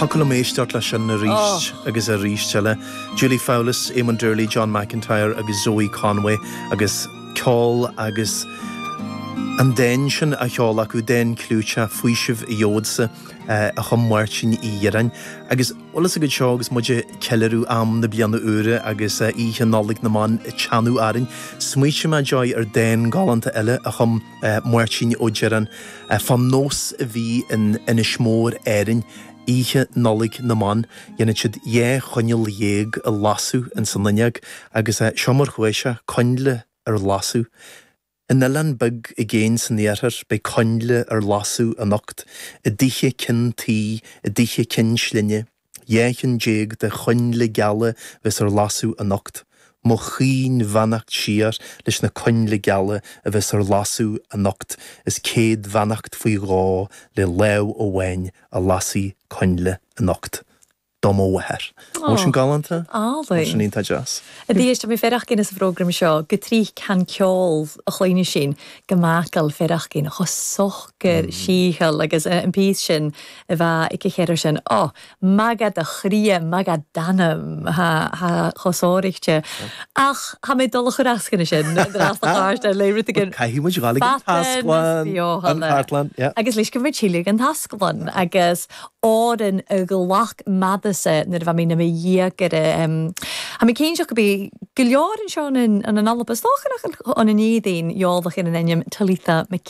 Thiocfadh liom éisteacht leis sin arís agus arís eile. Julie Fowlis, Éamon Doorley, John McIntyre agus Zoë Conway agus ceol agus an dán sin á cheol acu, dán clúiteach 'Faoiseamh a Gheobhadsa' a chum Máirtín Uí Dhireáin. Agus bhfuil fhios agat, seo agus muid ag ceiliúradh am na bliana úire agus Oíche Nollag na mBan ag teannadh orainn, smaoitigh mé, Joy, ar dán galánta eile a chum Máirtín Ó Direáin, fán nós a bhí in Inis Mór, Árainn, oíche Nollaig na mBan. Dhéanfadh siad dhá choinneal dhéag a lasadh ins an fhuinneog agus seo mar chuaigh sé, coinnle ar lasadh. In oileán beag i gcéin san iarthar beidh coinnle ar lasadh anocht, i dtithe cinn tuí, i dtithe cinn slinne. Dhá cheann déag de choinnle geala a bheas ar lasadh anocht. Mo chaoin bheannacht siar leis na coinnle geala a bheas ar lasadh anocht is céad bheannacht faoi dhó le lámh amháin a lasfaidh coinnle anocht. Do mo mháthair. An bhfuil sin galánta? An bhfuil sin Álainn. iontach deas? A Dhia, is tha mi faireachdainn anns a' phrògram seo, gu tric can ceol a chluinneas sinn, go macall faireachdainn cho socair sìtheil agus an píos sin a bha aici chéir ar sin. Ó, math dha do chridhe, math dha d' anam, ha, ha, cho sònraichte ach tá mé ag dul a chur asc anois sin, dreas do chairt ar lé rud éigin. Caithfidh muid dhul ag an tasclann, an chartlann, yeah. Agus leis go mbeidh Síle ag an tasclann agus òran a ghlac m' aire-sa nuair a bha mi nam dheugaire, tha mi cinnteach gum bi gu leòr an seo ann an Alba, is dòcha ann an Èirinn, eòlach air an ainm Talitha Mc.